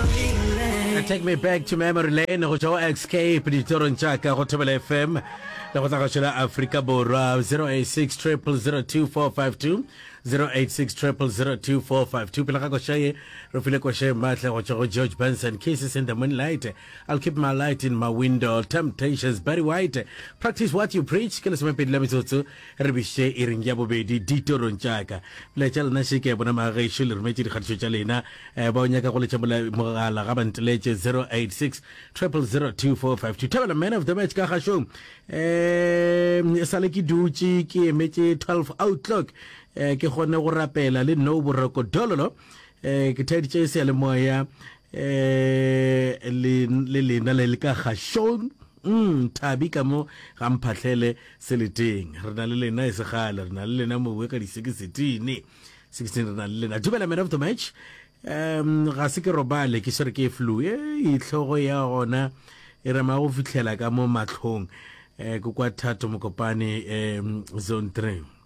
Uh, take me back to memory lane go tšwa go escape ditorong tša ka go thobela fm le go tla go šola aforika borwa 086 002452 086 002452 pele ga košaye re file košaye maatla go tšwa go george benson kisses in the moonlight i'll keep my light in my window temptations barry white practice what you preach ke lesomepedi la metsotso Re biše iring ya bobedi ditorong tša ka. Melaetša ya lena še ke a bona ma gešo le rometše dikgatišo tša lena. Eh, ba o nyaka go letša mola- mogala ga ba nteletše 086 000 2452. Thabela man of the match ka gašong. Eh, e sale ke dutše ke emetše 12 outlock eh, ke kgone go rapela le no boroko dololo. Eh, ke thaeditše seyalemoya eh, le le lena le le ka gašong. Umm Thabi ka mo ga Mphahlele seleteng. Re na le lena e se kgale. Re na le lena mowe ka di sekisitini. Sekisitini re na le lena. Dumela man of the match. Um ga se ke robale ke swere ke flu. Ei tlhogo ya gona e rema go fihlela ka mo matlhong. Eh, ke kwa Thato Mokopane um zone 3.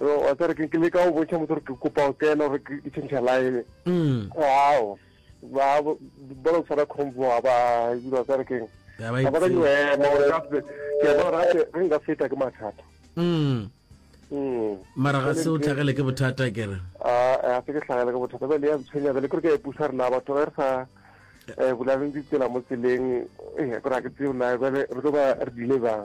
Wa tsere ke le ka o botša motho gore ke kopa go kena gore ke tšhentšha line. Ao. Ba ba lo tshwara combo ba ba dira tsere keng. Ba ba ka yo ema gore ka se ke ba ra ke re nka feta ke mathata. Mm. Mm. Mara ga se o tlhagele ke bothata ke re. Ah, a se ke tlhagele ke bothata. Ba le ya tshwenya ba le gore ke e pusa rena batho re sa eh bulaleng ditsela mo tseleng eh gore ke tseo na ba re tlo ba re dile bang.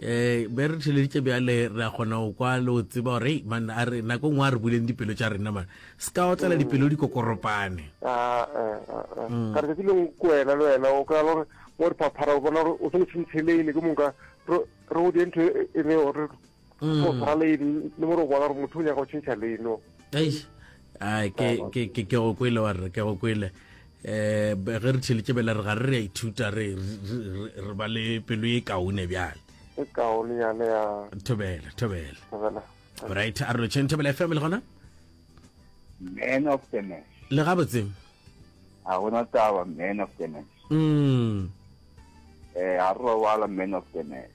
eh be re theleditše bjale re a kgona go kwa le o tseba gore ei man a re nako ngwe a re buleng dipelo tša rena man se ka otlela mm. dipelo di kokoropane ah, eh, eh, eh. mm. ka re tsatsi leng ko wena le wena o kry-a gore mo re phaphara o bona gore o se motshintsheleile ke monka re o dintho e, e le gore mm. o tshwara leine le mo re o bona gore motho o nyaka go tšhentšha leino ai ke ke ke ke go kwele wa re ke go kwele eh ge re tšheletse bela re ga re re ithuta re re ba le pelo e kaone bjale e kaone ya le ya thobela thobela thobela right a re tšhentse bela family gona man of the match le ga botse a gona taba man of the match mm eh a re wala man of the match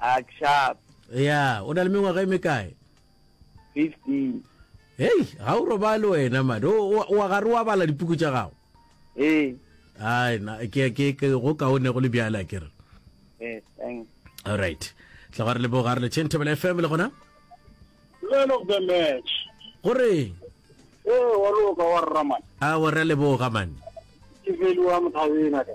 Akshat. ya o na le mengwaga e mekae 15. hei ga o robale wena mane O- o- wa gare wa bala dipuku tša gago Hey, ai na ke ke ke go kaone go le bjale a kere hey, thanks. alright tla ga re leboga re le chain table fm le gona Man of the match. gore Ee, wa loka wa rraman. a wa re a leboga mane Ke veliwa mothabeng a ka.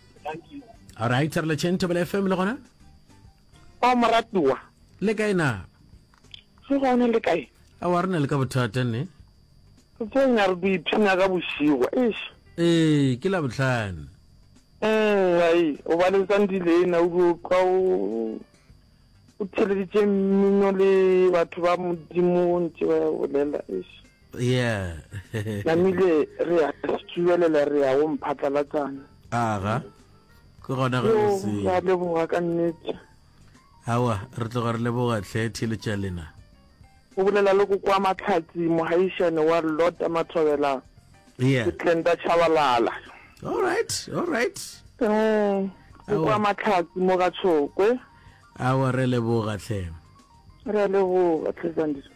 thank you all right re le chen tobele fm le gona o moratiwa le kae na se gone le kae a wa rena le ka bothata ne re tsenya re duiphina ka bošigwa eish ee ke la botlhane um ai o ba letsang dilena o dio kwa o o theleditše mmino le batho ba modimo ntse ba bolela eish yeah namile re a stubelela re a o mphatlalatsana aga ke gona ge o se ya leboga ka nnete awa re tloga re leboga tlhe thiletša lena o bolela le go kwa matlhatsi mogaišane wa lota mathobela yeah ke tlenda chabalala all right all right um go kwa matlhatsi mo ga tshokwe awa re leboga tlhe re leboga tlhe zandile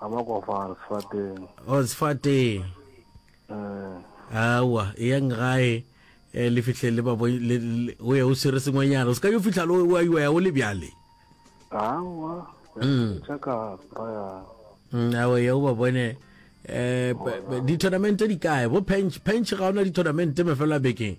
ga ba kwa far sefateng o sefateng eh awa e yang gae eh, le fihle le ba bo- le- le- o ye o swere sengwenyana o se ka yo fihla le wa iwa ya o le bjale awa Mm. tša ka raya Mm, awa ya o ba bone eh, ba- ba- di-tournamente di kae bo pench pench ga ona di-tournamente mefelo a bekeng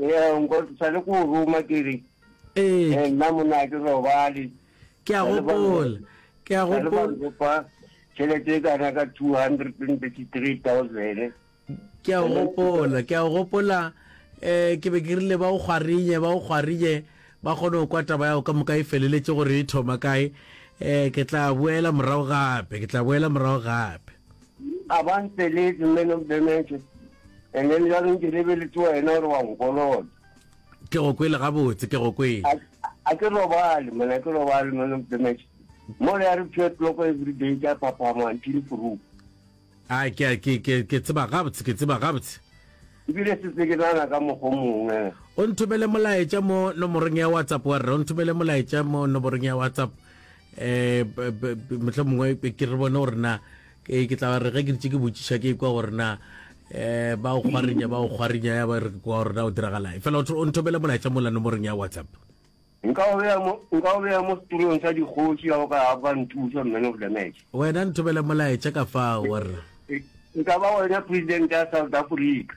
Ee, nko sa le ko ruma ke re Ee, eh, nna monna a ke robale ke a gopola. Ke a sa le ba gopola. nkopa tšhelete e kana ka 233000 Ke a gopola. Ke a gopola. Eh, ke be ke rile ba o kgwarinye, ba o kgwarinye. Ba kgone go kwa taba yago ka moka e feleletše gore e thoma kae. Eh, ke tla boela morago gape. Ke tla boela morago gape. A ba nteletše, mme le mpemetše, and then bjalo nke lebeletse wena gore wa nkolota. Ke go kwele gabotse, ke go kwele. A, a ke robale, monna, a ke robale, mme le mpemetše. Mole ya re pure clock every day ke a phaphama until proof. A ke a ke ke ke tseba gabotse, ke tseba gabotse. Ebile setse ke nana ka mokgo mongwe. O nthomele molaetša mo nomorong ya WhatsApp wa rre, o nthomele molaetša mo nomorong ya WhatsApp. um motlha mongwe ke re bone gore na ke tla re ge ke ditse ke botšiša ke kwa gore na um ba o kgwarinya ba o kgwarinya ya ba re kwa gore na o diragalae fela o nthomele molaetsa mola nomorong ya whatsapp nka o beya mo setulong sa dikgoši ya o ka ba nthusa man of the match wena nthomele molaetsa ka fa gore e ka ba wena president ya south africa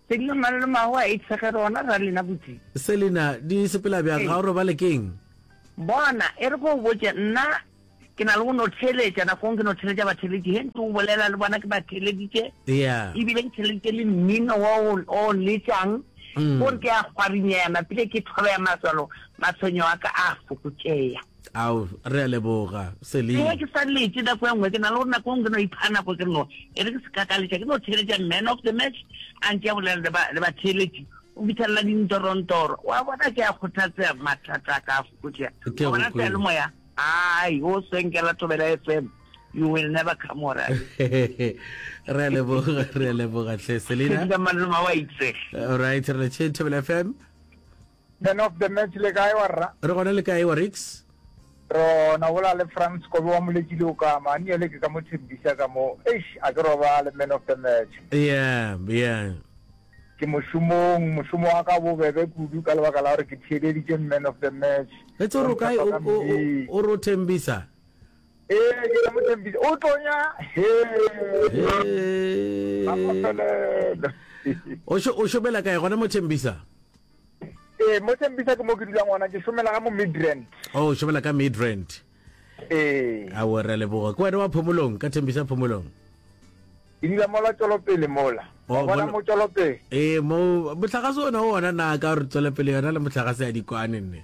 Selina Malolo mago a itshege rona ra lena botsi. Selina di sepela bjang ga o robale keng. Bona e re ko o botše nna ke na le go no theletša nakong ke no theletša batheletši he ntse o bolela le bona ke ba theleditše yeah. ebile ke theleditše le mmino wa o letšang gore mm. ke a kgwarinyana pile ke thobea matswalo matshwenyo a ka a fokotšeya Ao, re a leboga, Celine. Ewa ke sa lete nako e nngwe, ke na le gore nako e nngwe ke no ipha nako ke re no, e re ke se ka ka letša, ke no theeletša man of the match, a nke a bolela le ba, le batheeletši, o fithelela dintorontoro. Wa bona, ke a kgothatsea, mathata a ka a fokotšea. Ke a go Wa bona, kwele. seyalemoya, ai, wo senkela Thobela FM, you will never come all right. Re a leboga, re a leboga, hle, Selina. Sedika malome wa itsege. All right, re le tšhe, Thobela FM. Man of the match le kae wa rra? Re gona le kae wa Riks? Ro na bola le Frans Kobe wa Moleti le Okama, a nnyele ke ka mo thembisa ka mo, eish a ke robale man of the match. Yeah, yeah. Ke mošomong, mošomo wa ka o bobebe kudu ka lebaka la gore ke theeleditše man of the match. Etse o re o kae o re o thembisa? Ee, ke ka mo thembisa, o tlonya, hee, a mo felele. O šobela kae gona mo thembisa? Ee, mo Tembisa ke mo ke dulang gona, ke šomela ga mo Midrand. Oh, šomela ka Midrand. Ee. A wo re leboga. Ke wena wa Phomolong ka Tembisa Phomolong. Ke dula mola Tswelopele mola. Oh, bona mo Tswelopele. Ee, mo motlagase ona o ona na ka re Tswelopele yona le motlagase ya dikwane nne.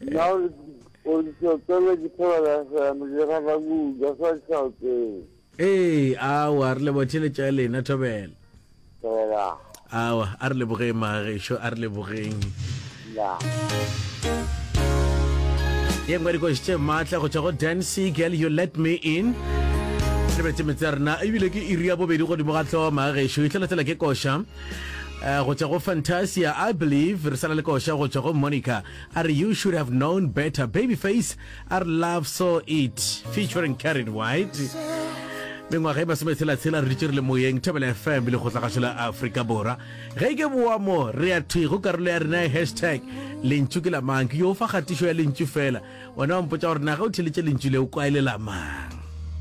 Nna o ntšhotele ke thobela seno ke rata kudu a sa tšhaotele. Ee, awa re leboga theletša ya lena thobela. Thobela. Awa a re lebogeng magešo a re lebogeng. Ya. ye nngwe dikoši tše maatla go tšwa go dancy girl you let me in re betse metse ya rena ebile ke iri ya bobedi godimo ga tlhoma gešo itlhelatlhela ke koša Uh, go tšwa go fantasia i believe re sala le koša go tšwa go monica a re you should have known better baby face a re love so it featuring carried white mengwaga e masome tshelatshela re ditše re le moyeng thabela fm le kgotlagašo la aforika borwa ge e ke boamo re ya thwi go karolo ya rena ya hashtag lentšu ke lamang ke yo fa kgatišo ya lentšu fela ona wa mpotsa gore na ge o theletše lentšu le o kwaele lamang